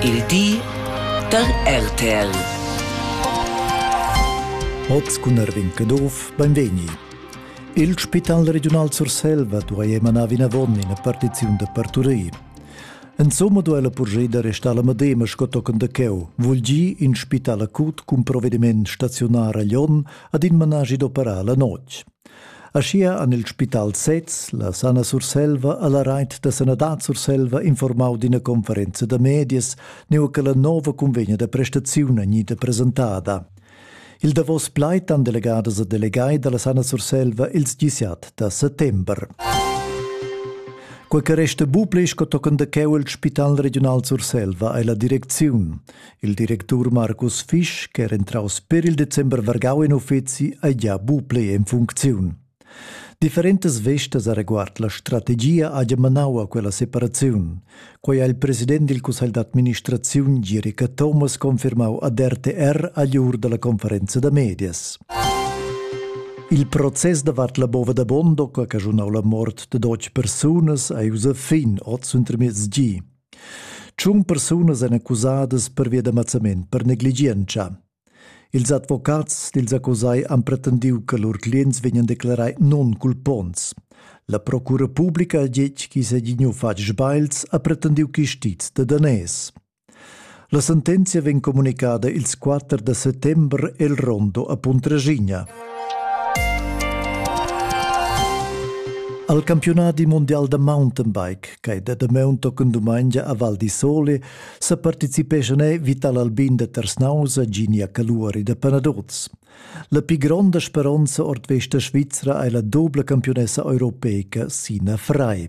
Il di da RTL. Oz cun Erwin Caduff, benvegni. Il Spital Regiunal Surselva duai emanar vinavon ina partiziun da parturir. Insomma duai la purgida da restar la Madema sco tochen da cheu, vul dir in spital acut cun provediment staziunar a Lyon ad in managi d'operar la notg. Aschia han il spital sez, la Sana Surselva e la Reit da sanadad Surselva informau d'ina conferenza da medias neu che la nova convegna da prestaziun gnida presentada. Il davos plaid han delegadas e delegai dalla Sana Surselva ils disiat da settember. Quei che resta buca sco tochen da cheu il Spital regional Surselva ei la direcziun. Il directur Markus Fisch, ch'era entraus per il december vargau in uffeci, ei gia bu plei en funcziun. Differentas vestas areguard la strategia haja manau a quella separaziun. Quei ha il president dil cussegl d'administraziun Girica Thomas confirmau ad RTR agliur dalla conferenza da medias. Il process davart la bova da Bondo, che ha caschunau la mort de dotg persunas, ei ussa fin oz untermiez gi. Tschun persunas èn accusadas pervia da mazzament per negligientscha. Ils advocats dils accusai han pretendiu che lur clients vegnan declarai nonculponts. La procura publica ha detg ch'i seigi gnü fatg sbagls ha pretendiu chistiz da daners. La sentenzia vegn communicada ils 4 da settembre el rondo a Puntraschigna. Al campionati mondial da mountainbike, che è da maun tochen dumengia a Val di Sole, sa participeschan Vital Albin da Tersnausa, Ginia Caluari da Panadoz. La più grande speranza ord vesta svizra è la doble campionessa europeica Sina Frei.